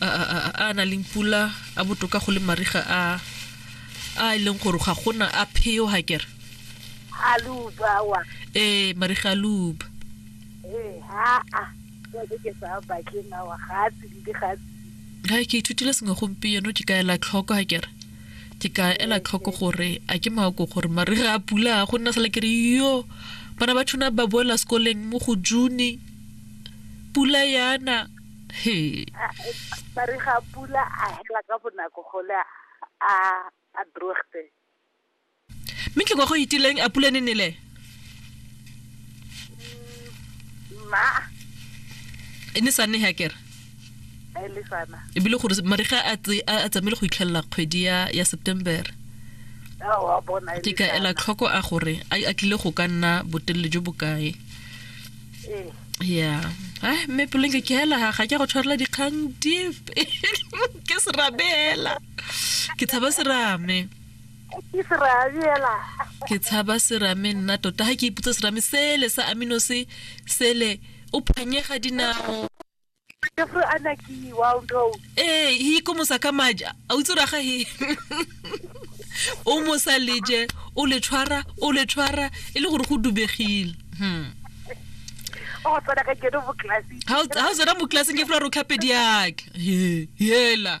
a na leng pula a botoka go le mariga a a e leng gore ga gona a pheo ga kere a luba wa ee mariga a luba ee ha a ke sa ba ke na wa ga tse di ga ga ke ithutile sengwe gompieno ke ka ela tlhoko ga kere ke ka ela tlhoko gore a ke mako gore mariga a pula go nna sala ke re yo bana ba tshwana ba boela sekoleng mo go june pula yana ba re ga pula a hela ka bonako gole a a droogte mme ke kwa go itileng a pula ne nele ma e ne sa ne ha kere e bile gore mariga a tsamaile go itlhelela kgwedi ya september ke ka ela tlhoko a gore a tlile go ka nna botelele jo bokae ya a mme pelonke ke hela ga ke go tshwarela dikgang dipe ke serabe hela ke tshaba serame ke tshaba serame nna tota ga ke iputsa serame sele sa amino se sele o phanyega dinao Jeffrey Anaki, wow, no. ee hi ko mosa ka maja a o tsura ga he o mosa leje o le tshwara o le tshwara e le gore go dubegile Hmm. Oh, tsena ka kene mo classing. ha o- ha o tsena mo classeng ke fela ro tlhape diake He, hela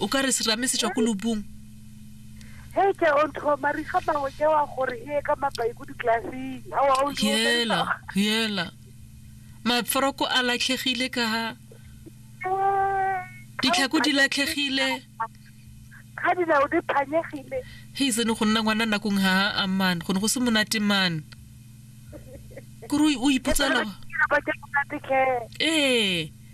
o ka re serame se tswa ko lobung he ke o ntho mariga mangwe ke wa gore e ka mapai ko diklaseng yela yela maforoko a latlhegile ka ha ditlhako di latlhegile ga dinao di phanyegile he sene go nna ngwana nakong ga a man go ne go se monate man kore o ipotsela ee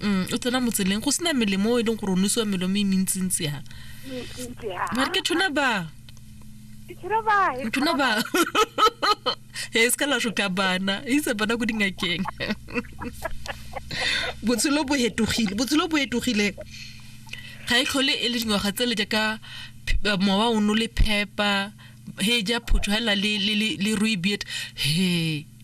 mm, o tsena motseleng go sena melemo o e leng gore o nosiwa melemo e mentsintsi ya mare ke thona ba ntona ba e se ka la soka bana e itse bana ko dingakeng botshelo bo hetogile botshelo bo hetogile ga e tlhole e le dingwaga tse le jaaka mowa o no le phepa he ja photho hela le le le ruibiet he